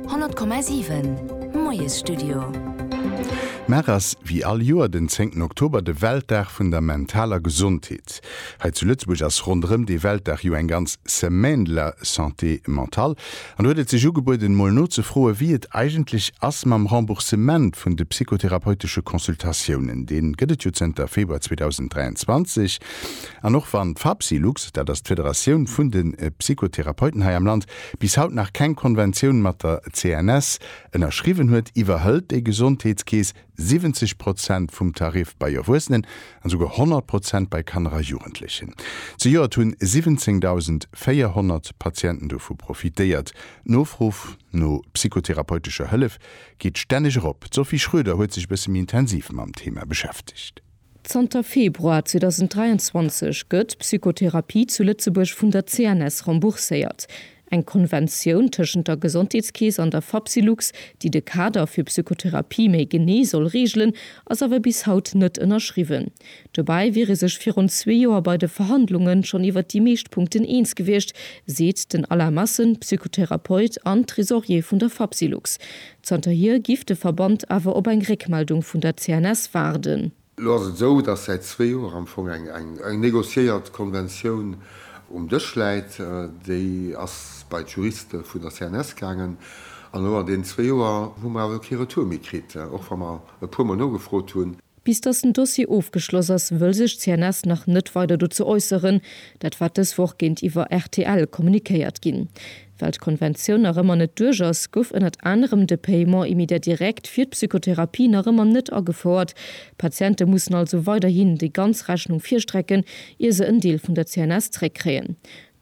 100,7 Moiesstudio. Mar ass wéi all Joer den 10 Oktober de Weltdag vun der mentaler Gesondheet. Hei zu Lëtzebuerg ass ronderëm dee Weltdag jo eng ganz Semaine de la santé mentale an do huet et sech ugebueden mol nozefroen wéi et eigentlech ass mam Remboursement vun de psychotherapeutesche Consultatiounen. Dee gëtt et jo zënter Februar 2023. An och wann d'Fapsylux, dat ass d'Federatioun vun de Psychotherapeuten hei am Land, bis haut nach keng Konventioun mat der CNS ënnerschriwwen huet, iwwerhëlt déi Gesondheetskeess 70 Prozent vum Tarif bei Erwuessenen an esouguer 100 Prozent bei Kanner a Jugendlechen. Zejoert hunn 17.400 Patienten dovu profitéiert. D'Nofro no psychotherapeutescher Hëllef geet stänneg erop. D'Sophie Schroeder huet sech e bësse méi intensiv mam Thema beschäftegt. Zanter Februar 2023 gëtt d'Psychotherapie zu Lëtzebuerg vun der CNS rembourséiert. Eng Konventioun tëschent der Gesondheetskeess an der Fapsylux, déi de Kader fir Psychotherapie méi genee soll reegelen, ass awer bis haut net ënnerschriwwen. Dobäi wier ee sech virun zwee Joer bei de Verhandlunge schonn iwwer déi meescht Punkten eens gewiescht, seet den Alain Massen, Psychotherapeut an Tresorier vun der Fapsylux. Zanterhier giff de Verband awer op eng Réckmeldung vun der CNS waarden. Elo ass et esou, datt säit zwee Joer am Fong eng negociéiert Konventioun um Dësch läit. Déi ass bei d'Juriste vun der CNS gaangen. An elo an deenen zwee Joer hu mer awer kee Retour méi kritt, och wa mer e puermol nogefrot hunn. Bis datt den Dossier ofgeschloss ass, wëll sech d'CNS nach net weider dozou äusseren. Dat war dës Woch géintiwwer rtl kommunikéiert ginn. Well d'Konventioun nach ëmmer net duerch ass, gouf ënnert anerem de Paiement immédiat direct fir d'Psychotherapie nach ëmmer net agefouert. D'Patiente mussen also weiderhin déi ganz Rechnung virstrecken, ier se en Deel vun der CNS zréckkréien.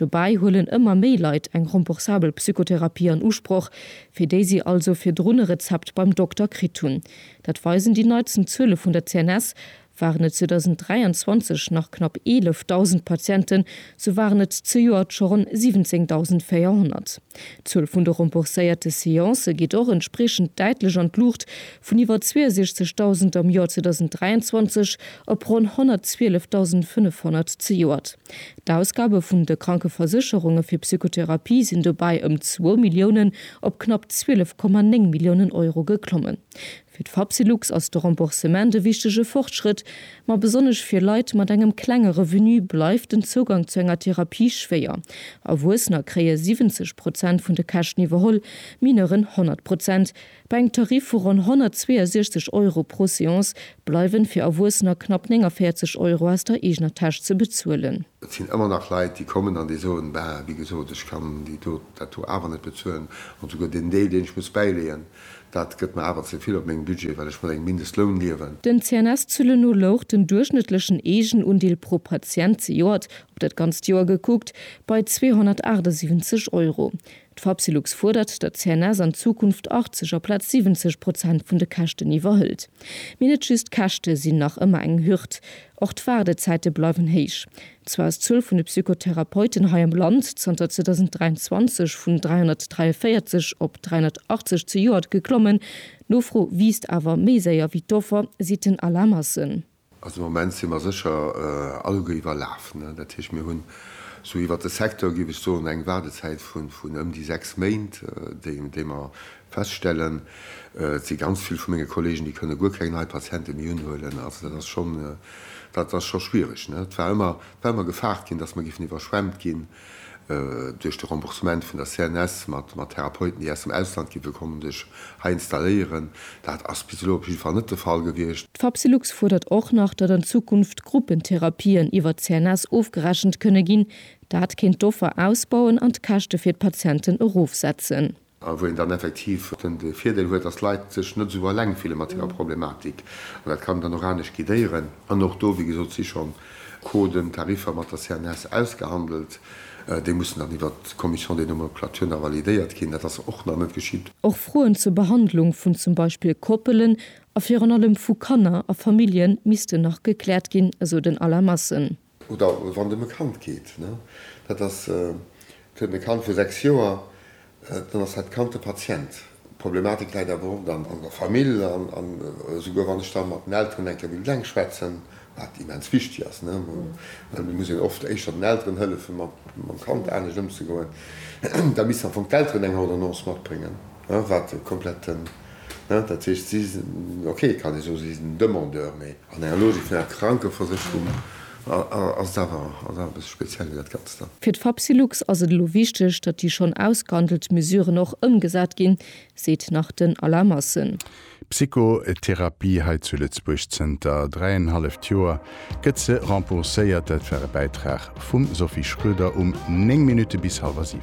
Dobäi huelen ëmmer méi Leit eng remboursabel Psychotherapie an Usproch, fir déi si also virdrun e Rezept beim Dokter kritt hunn. Dat weisen déi neitsten Zuele vun der CNS. Waren et 2023 nach knapp 11.000 Patienten, sou waren et zejoert scho ronn 17.400. D'Zuel vun de rembourséierte Seancë geet och entspriechend däitlech an d'Luucht, vun iwwer 62.000 am Joer 2023 op ronn 112.500 zejoert. D'Ausgabe vun de Krankeversécherunge fir Psychotherapie sinn dobäi ëm zwou Milliounen op knapp 12,9 Milliounen Euro geklommen. Fir d'Fapsylux ass de Remboursement e wichtege Fortschrëtt, ma besonnesch fir Leit mat engem klenge Revenu bleift den Zougang zu enger Therapie schwéier. Erwuessener kréie 70 Prozent vun de Käschten iwwerholl, Mineuren 100 Prozent. Bei engem Tarif vu ronn 162 Euro pro Seance bleiwen fir Erwuessener knapp 49 Euro aus der eegener Täsch ze bezuelen. Et sinn ëmmer nach Leit, déi kommen an déi soen, Bah, wéi gesot, ech kann déi do, dat do awer net bezuelen. An souguer deen Deel, deen ech muss bäileeën, dat gëtt mer awer ze vill op mengem Budget, well ech mat engem Mindestloun liewen. Den CNS-Zuelen no louch den duerchschnëttlechen Eegenundeel pro Patient zejoert, op dat ganzt Joer gekuckt, bei 278 Euro. D'Fapsylux fuerdert, datt d'CNS an Zukunft 80 aplaz 70 Prozent vun de Käschten iwwerhëlt. Mee net just d'Käschte sinn nach ëmmer eng Hürd, och d'Waardezäite bleiwen héich. Zwar ass d'Zuel vun de Psychotherapeuten hei am Land zanter 2023 vun 343 op 380 zejoert geklommen, d'Nofro wiisst awer méi séier wéi d'Offer, seet den Alain Massen. Also am Moment si mer sécher alleguer iwwerlaf. Dat heescht, mir hunn sou iwwert de Secteur, géif ech soen, eng Waardezäit vun ëm déi sechs Méint, déi mer feststellen. Et si ganz vill vu menge Kollegen, déi kënne guer keng nei Patiente méi unhuelen. Also dat ass schonn, dat ass scho schwiereg. Et war ëmmer, war ëmmer gefaart ginn, datt mer géifen iwwerschwemmt ginn. Duerch de Remboursement vun der CNS mat Therapeuten, déi aus dem Ausland gi wëllen kommen, sech hei installéieren, dat ass bis elo op jidde Fall net de Fall gewiescht. D'Fapsylux fuerdert och nach, datt an Zukunft Gruppentherapien iwwer d'CNS ofgerechent kënne ginn. Dat kéint d'Offer ausbauen an d'Käschte fir d'Patienten erofsetzen. A wou een dann effektiv den Virdeel huet, dass d'Leit sech net esou eleng fille mat hirer Problematik. An dat kann dann och anescht guidéieren. An och do, wéi gesot, si schonn Coden, Tariffer mat der CNS ausgehandelt. Déi mussen dann iwwert d'Commission des nomenclatures nach validéiert ginn. Dat ass och nach net geschitt. Och Froen zur Behandlung vun zum Beispill Koppelen a virun allem vu Kanner a Famillje missten nach gekläert ginn, esou den Alain Massen. Oder wann dem e Kand geet, dat ass, et huet en e Kand vu 6 Joer, dann ass dat Kand de Patient. D'Problematik läit awer oft an der Famill an esouguer wann ech da mat den Elteren eng Kéier wéilt eleng schwätzen, wat immens wichteg ass, well et muss een oft éischter den Elteren hëllefen, mam Kand anescht ëmzegoen, da missten am Fong d'Elteren eng Ordonnance matbréngen. Hein, wat e kompletten, hein, dat heescht, si sinn, ok, kann ee soen, si sinn Demandeur, mee an enger Logik vun enger Krankeversécherung ass et awer, ass et awer e bësse speziell, dat Ganzt dann. Fir d'Fapsylux ass et elo wichteg, datt déi schonn ausgehandelt Mesuren och ëmgesat ginn, seet nach den Alain Massen. Psychotherapie hei zu Lëtzebuerg zënter dräienhalleft Joer gëtt se rembourséiert. Dat war e Bäitrag vum Sophie Schröder um 9 Minutte bis hallwer 7.